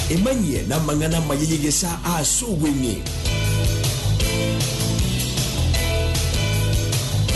Emanyie namang'ana amaya y'egesaa aase obweng'e.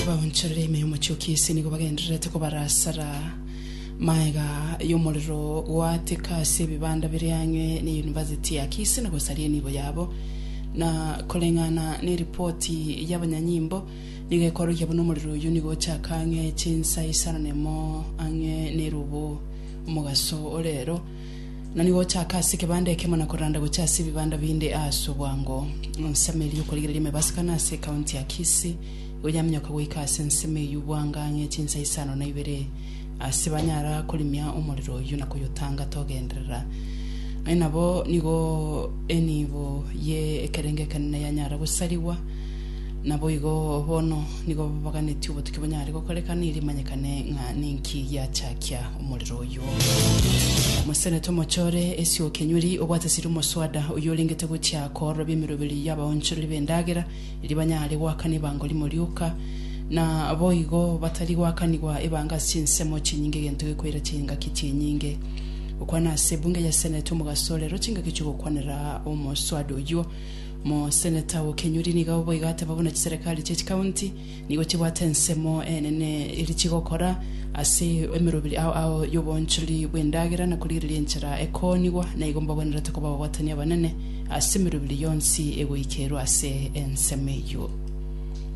Abaonchoreri ime y'omochie o Kisi nigo bagendererete kobarasara maega y'omorero goateka ase ebibanda bire ang'e ne University ya Kisi na gosaria enibo yabo. Na koreng'ana neripoti y'abanyanyimbo, nigo ekorokia buna omorero oyio nigo ochaka ang'e chinsa isano nemo ang'e nerubo. Omogaso o reero na nigo ochaaka ase ekebanda ekemo na koranda gocha ase ebibanda binde aase obwango. Ensemo eria okorigereria emebasi kane ase ekaunti ya Kisii nigo yaminyoka goika ase ensemo eyio bwanga ang'e chinsa isano na ibere ase banyara korimia omorero oyio na koyotanga togenderera. Aye nabo nigo enibo ye ekerengo ekenene yanyara gosarigwa. Naboigo bono Nigo babaganeti obotuki bonyare gokorekana erio emanyekane ng'a ninki giachakia omorero oyio. Omoseneta omochore Esio Okenyuri obwate siri omoswada oyio orengete gochia koororobia emeroberi y'abaonchoreri b'endagera erio banyare goakana ebango rimo rioka na boigo batari goakanigwa ebango ase chinsemo chinyinge egento gekoira chingaki chinyinge gokwana ase ebunge ya Senate omogaso orero chingaki chi'ogokwanera omoswada oyio. Moseneta o Kenyuri nigo boigo ateba buna chiserekari chie chikaunti nigo chibwate ensemo enene eri chigokora ase emeroberi ao ao y'obonchori bw'endagera na korigereria enchera ekoonigwa, na igo mbagwenerete koba ababwatani abanene ase emeroberi yonsi egoikerwa ase ensemo eyio.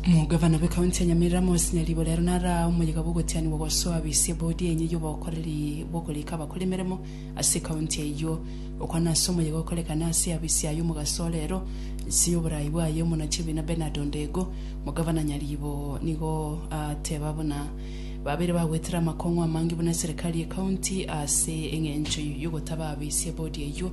Omogavana bw'Ekaunti ya Nyamira Amos Nyaribo rero nara omoyega bw'ogotianigwa gosoa abisia bodi enye y'obokoreri bw'okorika abakore emeremo ase ekaunti eyio. Okwana ase omoyega okorekana ase abisia ayio omogaso o rero inse y'oborai bwaye Omonachibiina Bernard Ondego, Omogavana Nyaribo nigo aateba buna babeire bagwetire amakong'u amange buna eserekari y'ekaunti ase eng'encho y'ogotaba abisia bodi eyio.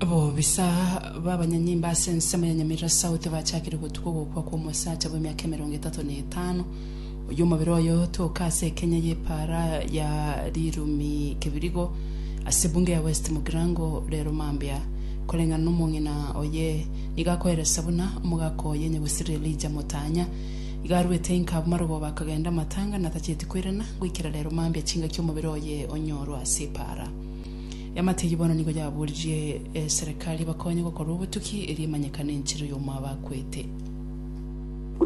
Abobisa b'abanyanyimba ase ensemo ya Nyamira South bachakire gotuga ogokwa kw'omosacha bw'emiaka emerongo etato na etano oyio omobere oye otoke ase ekenya y'epaara ya Rirumi Kibirigo ase ebunge ya West Mugirango rero mambia koreng'ana n'omong'ina oye nigo akoeresa buna omogaka oye Nyagusiri Elijah Motanya Iga arwete inka abwo marogoba bakagenda amatanga na tacheti koirana, goikera rero mambia chingaki omobere oye onyorwe ase epaara. Eamategi bono nigo yaboririe eserekari ebakonye gokora obotuki erio emanyekane enchera y'omoa bakwete.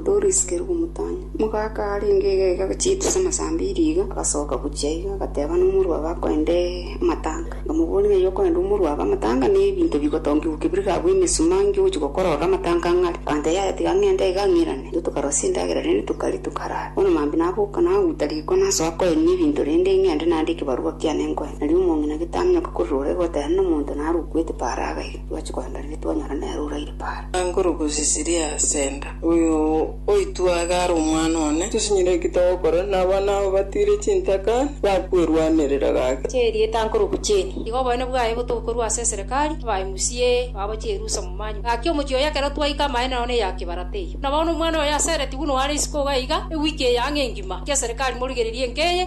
Doris Kerubo Mutanya, omogaka arenge iga iga agochieta ase amasaa ambiri iga, agasoka gochia iga agateba nomorwabe akoende amatanga. Nkamobooria, Ng'ai okorenda omorua abe amatanga, na ebinto bigotongigwa kebire gabwo emesuma, inki ogochia gokora orore amatanga ang'e are? Agantebia, Yaya, tiga ng'ende iga ng'irane. Intwe tokarosia endagera, rende tokaria, tokarara. Bono mambia naboka, naguta riko, nasoa koenia ebinto, rende ing'ende nande ekebarua kiane nkoe. Nario omong'ina getamenyoka korwa rore egoteba nomonto naro okwete Paara agaiga. Twachia kogenda rende twanyora nere oraire Paara. Anguru gosisiria ase enda. Oyo oitwe aye are omwana one. Tosinyire ki togokora na abana abo batiire chintaka bakwerwanerera gake? Ase erieta nkorokwa Jane. Iga oboene bwaye botokorwa ase eserekari, abae musie, babo chierusa momanywa. Gaki omochie oye ekero twaika amaene nao neya kibarata eyo. Buna bono omwana oyo aseretigwe noare isiko iga iga, ewiki eye ang'e engima, eki'eserekari morigererie enka eye.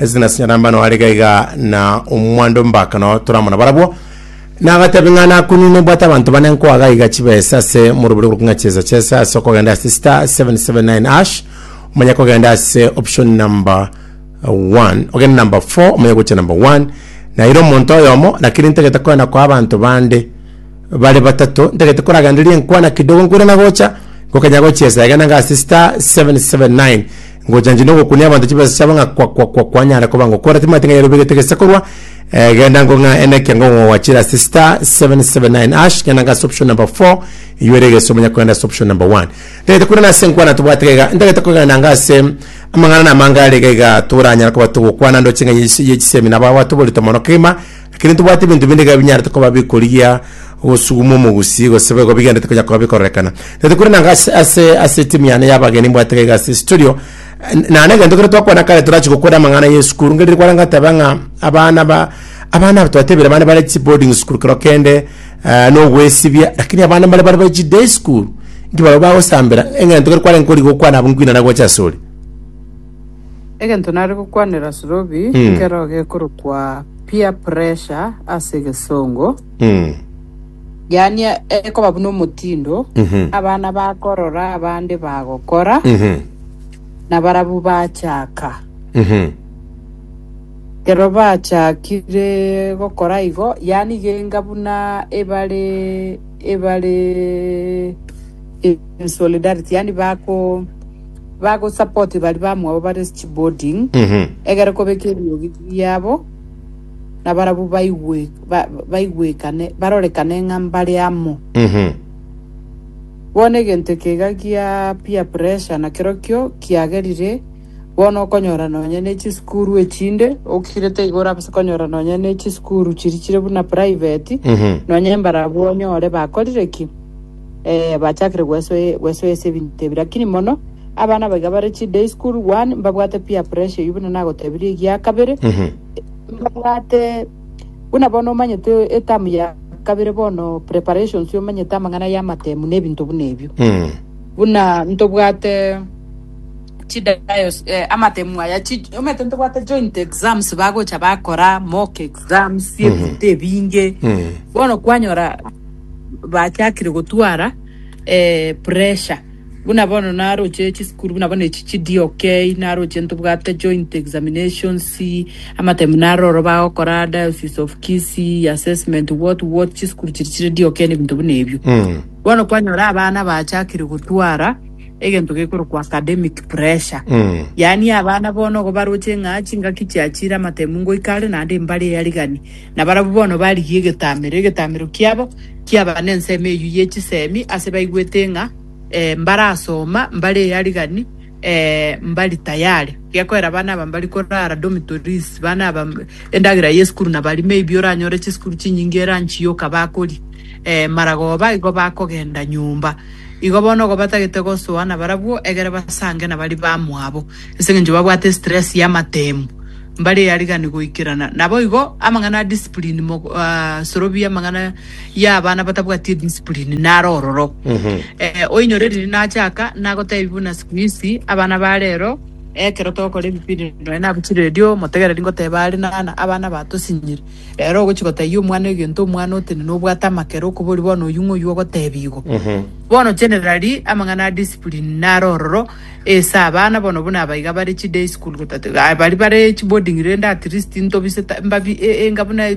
Ase nasinyora mbano are gaiga na omwando mbaka no toramona barabwo. Nagatebe ng'a nakunini nibwate abanto bane nkoa gaiga chibesa ase morobere korokwa ng'a chesa chesa ase okogenda ase star 779 ash omanye kogenda ase option number 1 ogende number 4 omanye gocha number 1 naire omonto oyomo lakini ntagete kogenda koa abanto bande bare batato ntagete koragendereria enkwana kidogo nkoirana gocha gokanya gochesa egena ng'a ase star 779 Ngochanchwa nogokunia abanto chibesa chiabo ng'a kwa kwa kwa kwanyare koba ng'o kore timanyete ng'a yarobegete gese korwa eh, genda ngo ng'a ene kia ngo ng'o wachira ase star 779 ash genda ng'ase option number 4 iyore egese omonya kwenda ase option number 1 ndagete kure nase nkwana tobwate gaiga ndagete kogenda ng'ase amang'ana na amangare gaiga toranyara koba togokwana ndo ching'a yechi- yechisemina ba batoborito mono kegima Ekero ntobwate ebinto binde iga binyarete koba bikorigia ogosuguma omogusii, gose boigo bigenderete konya koba bikororekana. Tete korende nanga ase, ase, ase etimu yane y'abageni mbwate iga iga ase studio, eh, nane egento ekero twakwana kare torachi gokora amang'ana y'esukuru, ngerire kware ngateba ng'a abana ba, abana aba twatebire abana bare chi boarding school kero kende, eh, na ogoesibia, rakini abana mbare bare chi day school, inki barabwo bagosambera, eng'ento ekero kware nkorigia okwana abwo nkwinana gocha asore. Egento nare gokwanera Sorobi nkero gekorokwa peer pressure ase egesongo, yaani ekoba buna omotindo abana bakorora abande bagokora na barabwo bachaka. Ekero bachakire gokora igo, yaani genga buna ebare ebare in solidarity yaani bako. Bagosapoti baria bamwabo bare chiboding, egere kobeka eriogi riabo, na barabwo baigwe, ba, baigwekane, barorekane ng'a mbare amo. Bono egento eke iga gia peer pressure nakerokio kiagerire bono okonyora nonya ne chisukuru echinde okirete igoro abase konyora nonya ne chisukuru chiri chire buna private nonya mbarabwo onyore bakorire ki Eh, bachakire gwesoe gwesoe ase ebinto ebi, lakini mono abana abaiga bare chi day school one mbabwate peer pressure eyio buna nagotebirie egia kabere mbabwate buna bono omanyete etamu ya kabere bono preparations omanyete amang'ana ya amatemu na ebinto buna ebio buna ntobwate chi dios eh, amatemu aya chi omanyete ntobwate joint exams bagocha bakora mock exams ebinto ebinge bono kwanyora bachakire gotwara eh, pressure buna bono naroche chisukuru buna bono echi chidi okay naroche ntobwate joint examinations amataimu naroro bagokora diocese of Kisii assessment what what chisukuru chiri chire di okay nebinto buna ebio Mm. bono kwanyora abana bachakire gotwara egento gekorokwa academic pressure Mm. yaani abana bono gobaroche ng'a chingaki chiachire amataimu ngoikare naende mbare yarigani Nabarabwo bono barigia egetamero, egetamero kiabo kiaba nensemo eyio ye chisemi, ase baigwete ng'a mbarasoma mbare earigani, mbari tayari. Gekoera abana aba mbari korara dormitories, abana aba endagera y'esukuru nabari maybe oranyore chisukuru chinyinge eranchi yoka bakori maragoba igo bakogenda nyomba. Igo bono igo batagete gosoa nabarabwo egere basange nabari bamwabo. Ase engencho babwate stress y'amatemu, mbare eyariganigwa goikerana. Naboigo amang'ana a discipline, mog, a, sorobia amang'ana y'abana batabwati ediscipline, naro ororo. Eh, oinyore riria nachaka, nagotebi buna siku hizi, abana ba rero, ekero togokora ebipindi nonya nabuchire erio, omotegereri ngoteba are nana, abana batosinyire. Rero ogochi gotebia omwana egento, omwana otenene obwate amakere okobori bono oyio ng'oyio ogotebi igo. Bono generally, amang'ana a discipline naro ororo, Ase abana bono buna aba iga bare chi day school gotatiga iga baria bare chi boarding rende at least ntobise ta mbabi enga buna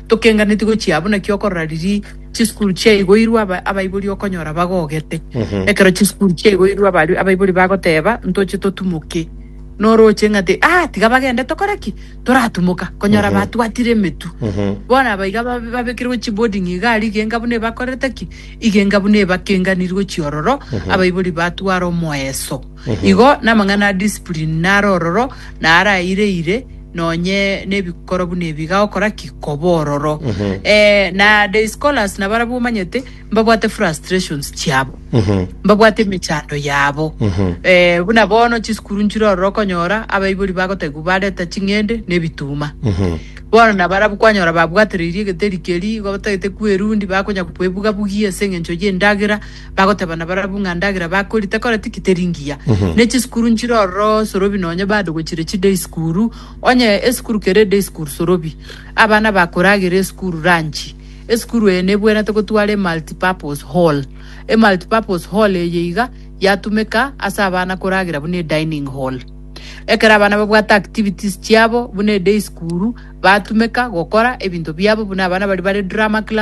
tokenganeti gochia buna ki okorora riria chi school chia igoirwe aba abaibori okonyora bagogete ekero chi school chia igoirwe aba abaibori bagoteba ntoche totumoke noroche ng'ate ah tiga bagende tokore ki toratumoka konyora batwatire emetu bono aba iga babekirwe chi boarding iga aria iga enga buna ebakorerete ki. Igenga buna ebakenganirwe chiororo, abaibori batware omoeso. Igo namang'ana a discipline nare ororo, na araireire nonye nebikoro buna ebi igagokora ki? Koba ororo. Eh, na day scholars nabarabwo omanyete mbabwate frustrations chiabo. Mbabwate emechando yabo. Eh, buna bono chisukuru nchire ororo okonyora abaibori bagotebwa bareta ching'ende na ebituma. Bono nabarabwo kwanyora babwatoreirie egeteri keria, igo batagete kwerundi, bakonya kwebuga-bugia ase engencho y'endagera, bagoteba nabarabwo ng'a ndagera bakoria tekoreti ki teri ngiya. Ne chisukuru nchire ororo sorobi nonye bado gochire chiday school, onye esukuru kere eday school sorobi. Abana bakoragera esukuru ranchi. Esukuru eye nebwenerete gotwara emulti-purpose hall. Emulti-purpose hall eye iga yatumeka ase abana koragera buna edining hall. Ekero abana babwate activities chiabo buna eday school batumeka gokora ebinto biabo buna abana baria bare drama class.